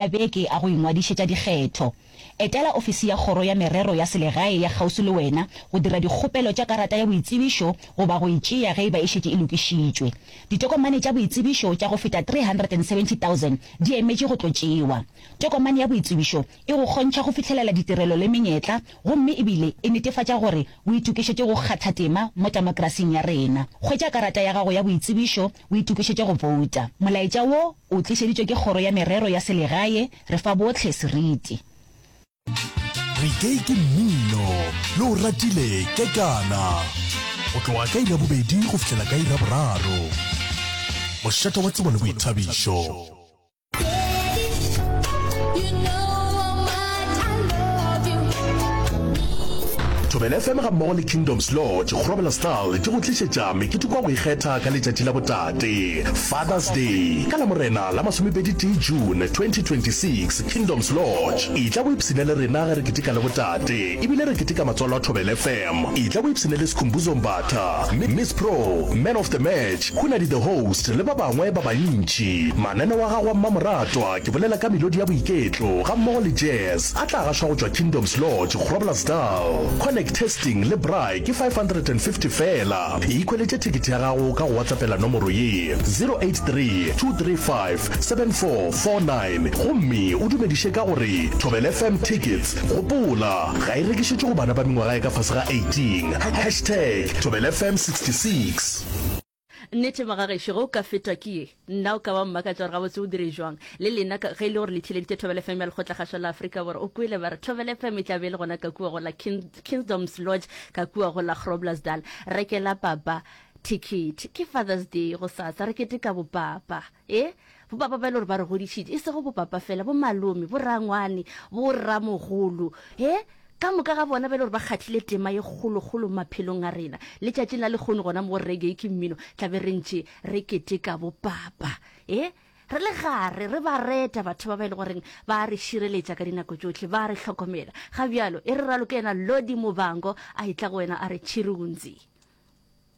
a beke a go ingwadišetša dikgetho. Etela ofisi ya Kgoro ya Merero ya Selegae ya kgauswi le wena go dira dikgopelo tša karata ya boitsebišo goba go e tšea ge e ba e šetše e lokišitšwe. Ditokomane tša boitsebišo tša go feta 370,000 di emetše go tlo tšewa. Tokomane ya boitsebišo e go kgontšha go fihlelela ditirelo le menyetla gomme e bile e netefatša gore o itokišetše go kgatha tema mo temokrasing ya rena. Hwetša karata ya gago ya boitsebišo O itokišetše go bouta. Molaetša wo o tlišeditšwe ke Kgoro ya Merero ya Selegae. Re fa bohle seriti. Reggae ke mmino yo o ratile ke kana. Go tloga ka iri ya bobedi go fihlela ka iri ya boraro. Mošate wa tsebo le boithabišo. thobela fm ga mmogo le kingdoms lodge go robela style di go tlišetša mekete kwa go ikgetha ka letšatši la botate fathers day ka la morena la masomepedi tee june 2026 kingdoms lodge e tla go ipshina le rena ge re keteka le botate ebile re keteka matswalo a thobela fm Etla o ipshine le Skhumbuzo Mbatha, Miss Pro, Man of the Match, Hunadi the Host le ba bangwe ba bantši. Mananeo a gago a mmamoratwa, ke bolela ka melodi ya boiketlo gammogo le jazz, a tla gašwa go tšwa Kingdoms Lodge, Groblersdal. Connect testing le Braai ke 550 feela. Ikhweletše thekete ya gago ka go WhatsAppela nomoro ye, 0832357449 gomme o dumediše ka go re, Thobelfm Tickets. Gopola, ga e rekišetšwe go bana ba mengwaga e ka fase ga 18. Hashtag thobelfm 66. Nnete maka gešo ge o ka fetwa ke ye nna o ka ba mmakatša gore gabotse o dire jwang le lena ka ge e le gore le theeleditše Thobela FM ya Lekgotlakgašwa la Afrika Borwa o kwele ba re Thobela FM e tla be e le gona ka kua go la Kingdoms Lodge ka kua go la Groblersdal rekela papa ticket ke Father's Day go sasa re keteka bopapa E, bopapa ba e le gore ba re godišitše, e sego bopapa fela, bo malome, bo rangwane, bo ramogolo, e, ka moka ga bona ba e le gore ba kgathile tema ye kgolokgolo maphelong a rena. Letšatšing la lekgono gona mo go reggae ke mmino, tla be re ntše re keteka bopapa. E, re le gare, re ba reta batho ba ba e le goreng ba a re šireletša ka dinako tšohle, ba a re hlokomela. Ga bjalo, e re raloke yena Lodi Mobango a etla go wena a re tšhirunzi.